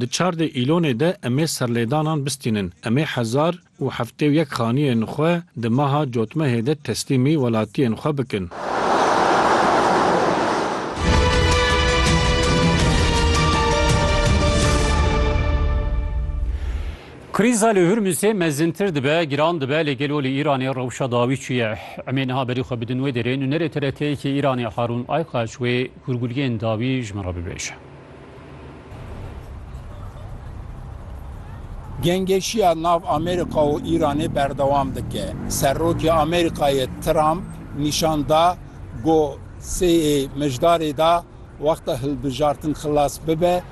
Di çar dê îlonê de em ê serlêdanan bistînin. Em ê hezar û heftê û yek xaniyên xwe di meha Cotmehê de teslîmî welatiyên xwe bikin. Krîza li Hurmûzê mezintir dibe, giran dibe lê gelo li Îranê rewşa dawî çi ye? Em ê niha berî xwe bidin wê derê. Nûnerê TRT'yê Îranê Harûn Aykaç wê hûrguliyên dawî ji min re bibêje. Gengeşiya nav Amerîka û Îranê berdewam dike. Serokê Amerîkayê Trump nîşan da ku seyê mijdarê de wexta hilbijartin xilas bibe,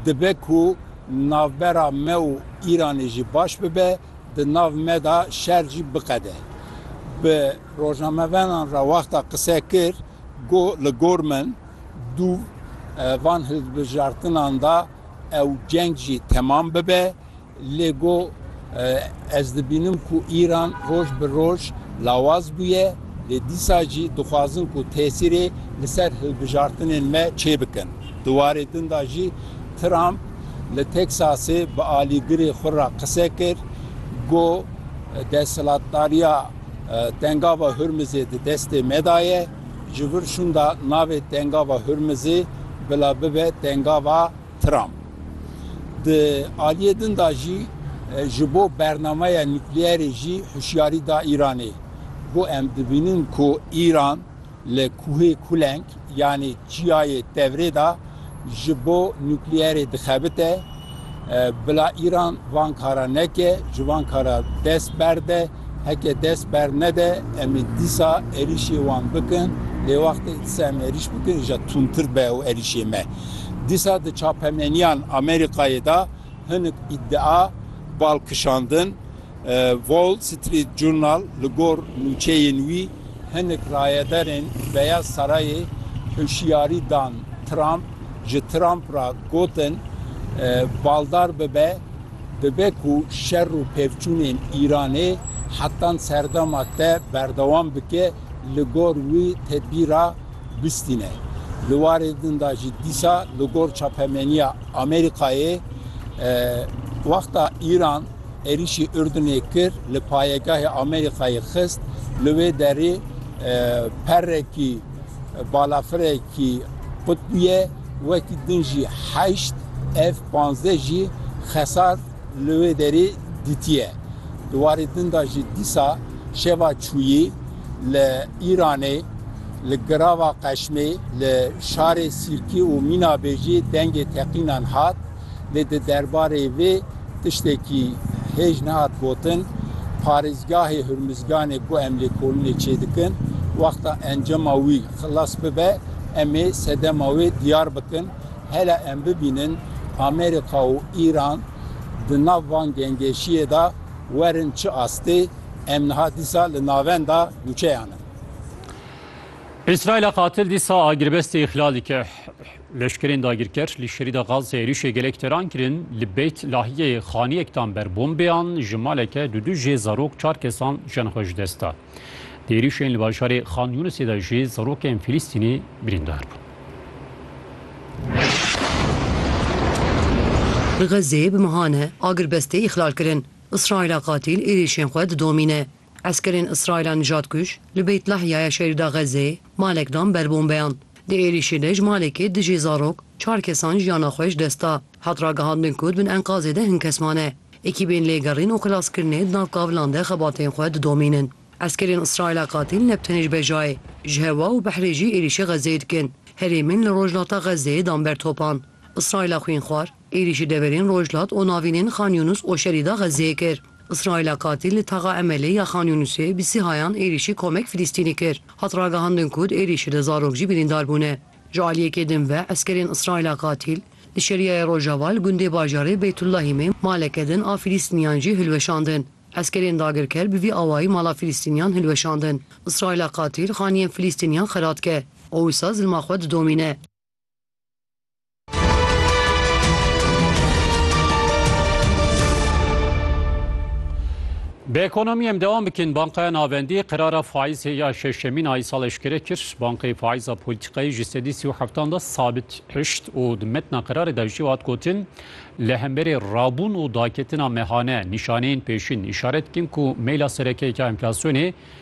dibe ku navbera me û Îranê jî baş bibe, di nav me de şer jî biqede. Bi rojnamevanan re wexta qise kir, got, Li gor min, Du van hilbijartinan de ew ceng jî temam bibe, lê got, Ez dibînim ku Îran roj bi roj lawaz bûye, lê dîsa jî dixwazin ku tesîrê li ser hilbijartinên me çêbikin. Di warê din de jî Trump li Teksasê bi alîgirê xwe re qise kir, got, Desthilatdariya Tengava Hurmizê di destê me de ye. Ji vir şûnda navê Tengava Hurmizê bila bibe Tengava Trump. Di aliyê din de jî ji bo bernameya nukleerê jî hişyarî da Îranê. Got em dibînin ku Îran li Kuhê Kuleng yanê çiyayê Tevrê de, ji bo nukleerê dixebite. Bila Îran van kara neke, ji van kara dest berde. Heke dest bernede, em ê dîsa êrîşê wan bikin. Lê wextê disa em êrîş bikin îja tundtir be ew êrîşê me. Dîsa di çapemeniyan Amerîkayê de hinik îdia bal kişandin. Wall Street Journal li gor nûçeyên wî hinek rayedarên Beyaz Sarayê hişyarî dan Trump, ji Trump re gotin baldar bibe, dibe ku şer û pevçûnên Îranê hetan serdema te berdewam bike li gor wî tedbîra bistîne. Li warê din de jî dîsa li gor çapemeniya Amerîkayê wexta Îran, Êrîşî Urdunê kir li payegahê Amerîkayê xist, li wê derê perekî balafirekî qutbûye wekî din jî heşt F-panzdeh jî xesar li wê derê dîtiye. Di warê din de jî dîsa şeva çûyî li Îranê li Girava Qeşmê li şarê Sîrkî û Mînabê jî dengê teqînan hat. lê di derbarê vê tiştekî hêj nehat gotin. Parêzgahê Hurmizganê ku em lêkolinê çêdikin, wexta encama wî xilas bibe, em ê sedema wê diyar bikin. Hela em bibînin Amerîka û Îran di nav van gengeşiyê de werin çi astê, em niha dîsa li navenda nûçeyan in. Îsraîla qatil dîsa agirbestê îxlal dike. Leşkerên dagirker li şerîda Gazê êrîşê gelek teran kirin, li Beyt Lahiyê xaniyek dan ber bombeyan, ji maleke du du jê zarok çar kesan jiyan xwe ji dest da. Di êrîşên li bajarê Xan Yûnisê de jî zarokên Filîstînî birîndar bûn. Xezê bi mehan e, agirbestê îxlal kirin. Îsraîla qatîl êrîşên xwe didomîne. Eskerên Îsraîla nijadkuj li Beyt Lahyaya şerîda Xezzeyê malek dan ber bombeyan. Di êrîşê de ji malekê dijî zarok çar kesan jiyana xwe ji dest da. Hat ragihandin ku di bin enkazê de hin kes mane. Ekîbên lêgerîn û xelaskirinê di nav kavilan de xebatên xwe didomînin. Eskerên Îsraîla qatîl ne bi tenê ji Bejayê, ji hewa û behrê jî êrîşê Xezzeyê dikin. Herêmên li rojhilata Xezzeyê dan ber topan. Îsraîla xwînxwar êrîşî deverên rojhilat û navînên Xan Yûnus û şerîda Xezzeyê kir. Îsraîla katil li taxa Emelê ya Xan Yûnusê bi sihayan êrîşî komek Filîstînî kir. Hat ragihandin ku di êrîşê de zarok jî birîndar bûne. Ji aliyekê din ve eskerên Îsraîla katil li Şeriyayê Rojava li gundê bajarê Beytullahîmê maleke din a Filîstîniyan jî hilweşandin. Eskerên dagirker bi vî awayî mala Filîstîniyan hilweşandin. Îsraîla katil xaniyên Filîstîniyan xerat dike û wisa zilma xwe didomîne. Bi ekonomiyê em devam bikin Bankaya Navendî qerara faîzê ya şeşemîn ayî sal eşkere kir. Bankayê faîza polîtîkayê ji sedî sî û heftan de sabit hişt û di metna qerarê de jî hat gotin li hemberê rabûn û daketina mehane nîşaneyên pêşîn îşaret dikin ku meyla serekeyeke enflasyonê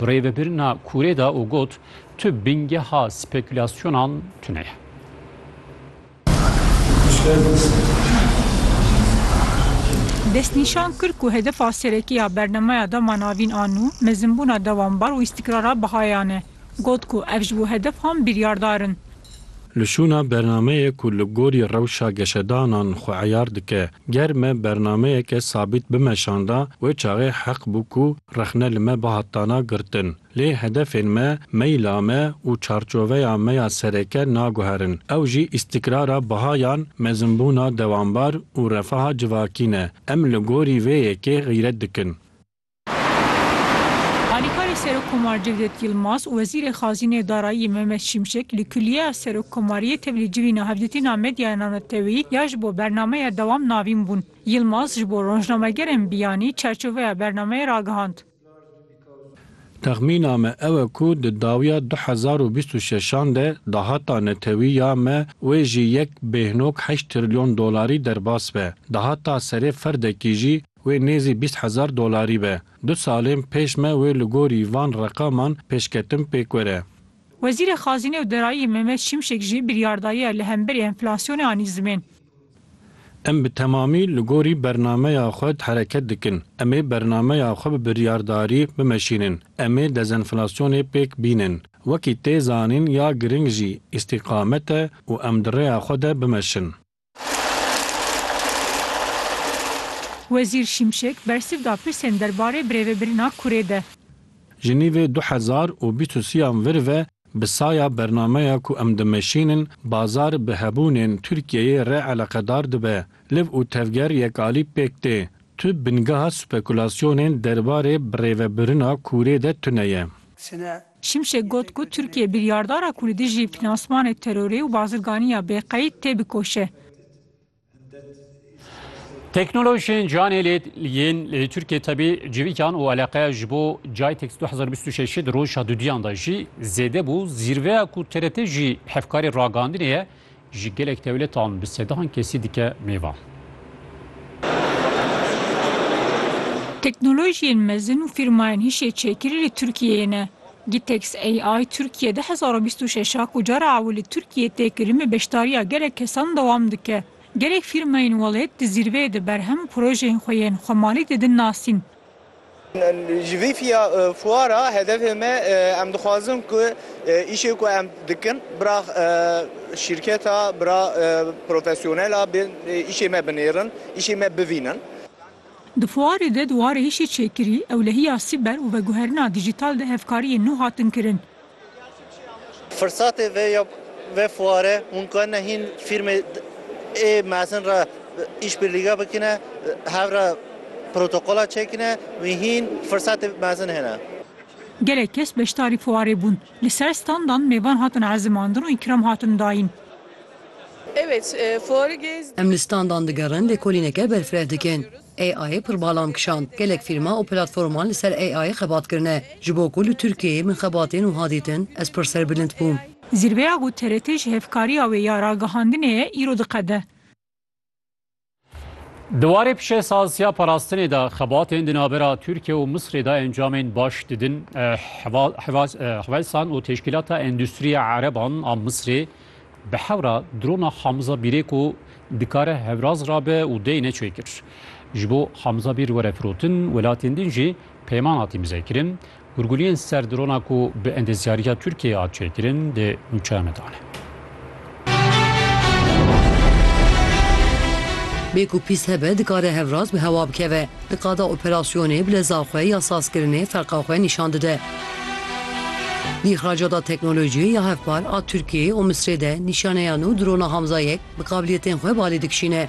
Bi rê ve birina kûrê da û got, Tu bingeha spekûlasyonan tune ye. Destnîşan kir ku hedefa serekî ya bernemeya dema navîn a nû mezinbûna dewambar û îstîkrara bihayan e. Got ku ev ji bo hedefahan biryardar in. Li şûna bernameyê ku li gorî rewşa geşedanan xwe eyar dike, ger me bernameyeke sabît bimeşanda, wê çaxê heq bû ku rexne li me bihat dana girtin. Lê hedefên me, meyla me û çarçoveya me ya sereke naguherin. Ew jî îstîkrara bihayan, mezinbûna dewambar û refaha civakî ne. Em li gorî vê yekê xîret dikin. Alîkarê Serokkomar Cevdet Yilmaz û Wezîrê Xazînê Darayî Mehmet Şimşek li Kulîyeya Serokkomariyê tevlî civî navdîtina medyaya nanetewî ya ji bo bernameya dewam navîn bûn. Yilmaz ji bo rojnamegerên biyanî çerçoveya bernameyê ragihand. Texmîna me ew e ku di dawiya du hezar û bîst û şeşan de dahata netewî ya me wê jî yek bêhnog heşt trilyon dolarî derbas be. Dahata serê ferdekî jî Wê nêzî bîst hezar dolarî be. Du salên pêş me wê li gorî van reqaman pêşketin pêk were. Wezîrê Xazînê û Derayî Mehmet Şimşek jî biryar daye li hemberî enflasyonê anî zimên. Em bi temamî li gorî bernameya xwe hereket dikin. Em ê bernameya xwe bi biryardarî bimeşînin. Em ê dezenflasyonê pêk bînin. Wekî tê zanîn ya giring jî îstîqamet e û em di rêya xwe de bimeşin. Wezîr Şimşek bersiv da pirsên derbarê birêvebirina kurê de. Ji nîvê du hezar û bîst û sî-yan vir ve bi saya bernameya ku em dimeşînin bazar bi hebûnên Tirkiyeyê re eleqedar dibe. Liv û tevger yek alî pêk tê. Tu bingeha spekulasyonên derbarê birêvebirina kurê de tune ye. Sine Şimşek got ku Tirkiye biryardara ku li dijî finansmanê terorê û bazirganiya bêqeyd tê bikoşe. Teknolojiyên canê lê yên li Tirkiyê tevî civîkan û eleqeya ji bo Jaytex du hezar bîst û şeş di roja duduyan de jî zêde bû. Zîrveya ku TRT jî hevkarê ragandinê ye, Ji gelek dewletan bi sedan kesî dike mêvan. Teknolojiyên mezin û fîrmayên hişê çêkirî li Tirkiyeyê ne. Gitex AI Türkiye du hezar û bîst û şeş a ku cara ew li Tirkiyeyê tê kirin bi beşdariya gelek kesan dewam dike. Gelek fîrmayên welêt di zîrveyê de berhem û projeyên xwe yên xwemalî didin nasîn. Ji vî fiya fuara hedefê me em dixwazin ku îşê ku em dikin bira şîrketa bira profesyonela bên îşê me binêrin, îşê me bivînin. Di fuarê de di warê îşê çêkirî, ewlehiya sîber û veguherina dîjîtal de hevkariyên nû hatin kirin. Firsatê vê ya vê fuare hûn karine hîn fîrmê ê mezin re îşbirlîge bikine, hev re protokola çêkine wî hîn firsatê mezin hêne. Gelek kes beşdarî fuarê bûn. Li ser standan mêvan hatin ezimandin û îkram hatin dayîn. Em li standan digerin lêkolîneke berfireh dikin. AI'yê pir balam kişand. Gelek fîlma û platforman li ser AI'yê xebat kirine. Ji bo ku li Tirkiyeyê min xebatên wiha dîtin, ez pir serbilind bûm. Zîrveya ku TRT ji hevkariya wê ya ragihandinê ye îro diqede. Di warê pişesaz ya parastinê de xebatên di navbera Tirkiye û Misrê de encamên baş didin. Hwelsan û teşkîlata Endûstriya Ereban a Misrê, Bi hewra drona Hamza Bîrê ku dikare hewraz rabe û dey neçûyê kir. Ji bo Hamza Bîr were firotin welatên din jî peyman hatî mizekirin. Gurguliyên ser drona ku bi endezyariya Tirkiyeyê hat çêkirin dê nûçeya me dane. Bê ku pîst hebe dikare hevraz bi hewa bikeve. Di qada operasyonê bi leza xwe ya sazkirinê ferqa xwe nîşan dide. Îxraca da teknolojiyê ya hevpar a Tirkiyeyê û Misrê de nîşaneya nû drona Hamza yek bi qabiliyetên xwe balê dikişîne.